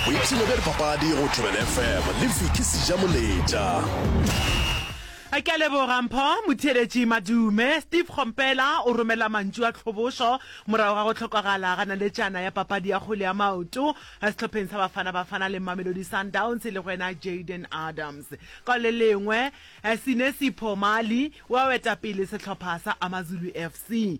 boipshino bja dipapadi go thobela fm le viki seja moletša A ke a leboga Mpho Motheeletši Madume. Steve Kgompela o romela mantšu a tlhobošo morago ga go hlokagala ga naletšana ya papadi ya kgwele ya maoto sehlopheng sa Bafana Bafana le Mamelodi Sundowns e lego yena Jayden Adams. Ka le lengwe, Sinesipho Mali o a weta pele sehlopha sa Amazulu FC.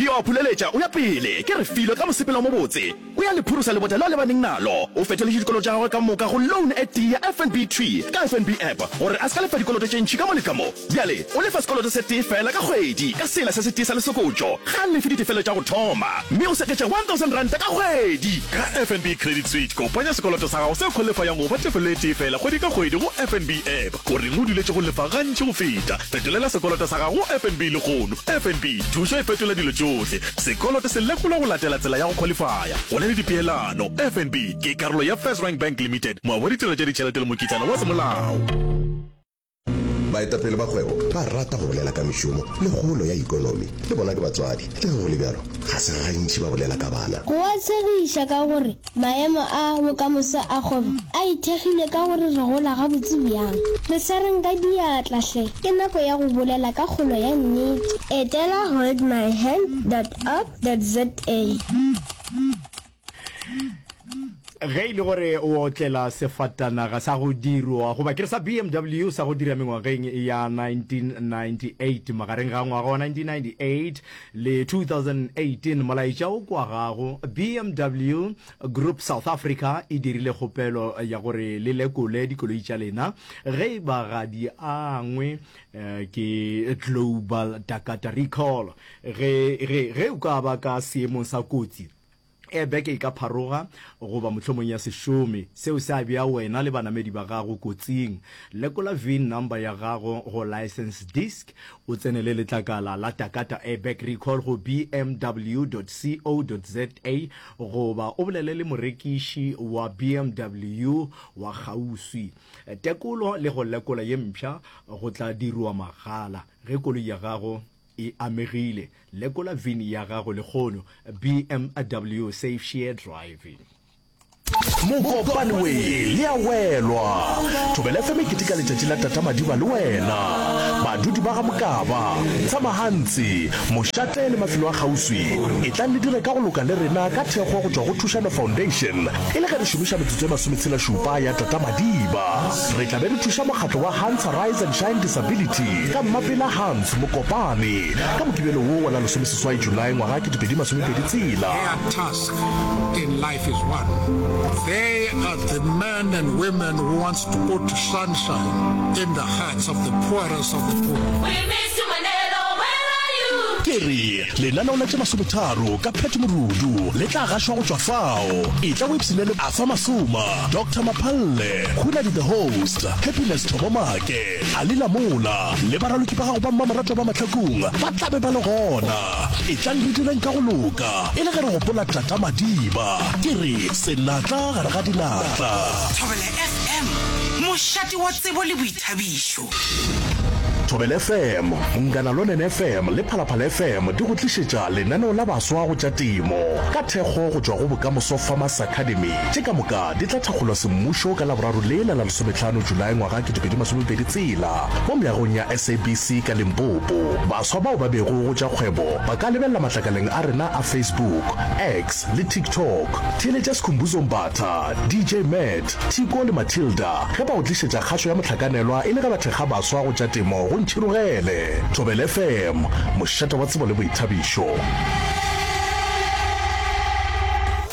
Ke yo a phuleletša, o ya pele, ke re filo ka mosepelo o mobotse, o ya le phurusa lebota leo a lebaneng nalo. O fetoletše dikoloto tša gagwe ka moka go loan e tee ya FNB thwi ka FNB app gore a se ka lefa dikoloto tše ntši ka mo le ka mo. Bjale o lefa sekoloto se tee feela ka kgwedi ka sela se se tee sa lesokotšo. Ga a lefe ditefelo tša go thoma, mme o seketša R1,000 ka kgwedi. Ka FNB Credit Suite, kopanya sekoloto sa gago se kholefayang go ba tefelo e tee feela kgwedi ka kgwedi go FNB app. O reng o duletše go lefa gantši go feta? Fetolela sekoloto sa gago go FNB lehono. FNB, thušo e fetola dilo tšohle. Sekoloto se lekolwa go latela tsela ya go khwalifaya. Go na le dipeelano. FNB ke karolo ya FirstRand Bank Limited, moabi wa ditirelo tša ditšhelete le mokitlana wa semolao. Baetapele ba kgwebo ba rata go bolela ka mešomo le kgolo ya ikonomi. Le bona ke batswadi, le ge go le bjalo, ga se gantši ba bolela ka bana. Go a tshegiša ka gore Maemo a bokamoso a kgwebo a ithekgile ka gore re gola gabotse bjang. Re swareng ka diatla hle! Ke nako ya go bolela ka kgolo ya nnete. Etela holdmyhand dot org dot za. Ge e le gore o otlela sefatanaga sa go dirwa goba ke re sa BMW sa go dira mengwageng ya 1998, magareng ga ngwaga wa 1998 Le 2018, molaetša o kwagago, BMW Group South Africa e dirile kgopelo ya gore le lekole dikoloi tša lena ge e ba ga di angwe ke Global Takata Recall. Ge, ge, ge o ka ba ka seemong sa kotsi, Ee, beke e ka pharoga, goba mohlomong ya se šome. Seo se a bea wena le banamedi ba gago kotsing. Lekola vin number ya gago go license disc, o tsenele letlakala la Takata Airbag Recall go bmw dot co dot za goba o bolele le morekiši wa bmw wa kgauswi. Tekolo le go lekola ye mpsha go tla dirwa mahala ge koloi ya gago e amegile, lekola vin ya gago lehono, BMW Safe Share Driving. Mokopane we le ya welwa thobela fm e keteka letšatši la tata madiba le wena badudi ba ga mokaba tshamahantsi mošate le mafelo a kgauswi e tlang le dire ka go loka le rena ka thekgo go tšwa go thušano foundation e le ge re šomiša metsotso e masometshela šupa ya tata madiba re tla be re thuša mokgatlo wa hansa rise and shine disability Ka mmapela Hans Mokopane ka Mokibelo wo wa la lesomeseswai July ngwaga ketepedi masomepedi tshela. Their task in life is one, they are the men and women who wants to put sunshine in the hearts of the poorest of the poor. We miss you Mandelo, where are you? Ke re, lenaneo la tše masometharo ka Pat Morudu le tla gašwa go tšwa fao. Etla o ipshinele Afa Masoma, Doctor Maphalle, Hunadi the Host, Happiness Thobomake, A le la mola, le baraloki ba gago ba mmamoratwa ba mahlakong ba tla be ba le gona. Etlang re direng ka go loka, e le ge re gopola Tata Madiba. Ke re, Senatla gare ga dinatla. Thobela FM, mošate wa tsebo le boithabišo. Thobela FM, Nganalonene FM le Phalaphala FM di go tlišetša lenaneo la baswa go tša temo ka thekgo go tšwa go Bokamoso Farmers Academy. tše ka moka di tla thakgolwa semmušo ka Laboraro lela la lesometlhano Julae ngwaga 2020 tsela mo meagong ya SABC ka Limpopo. Baswa bao ba bego go tša kgwebo ba ka lebelela matlakaleng a rena a Facebook, X le TikTok. Theeletša Sikhumbuzo Mbatha, DJ Matt, Tiko le Matilda ge ba go tlišetša kgašo ya mohlakanelwa e le ge ba thekga baswa go tša temo go Ntšhirogele. Thobela FM, mošate wa tsebo le boithabišo.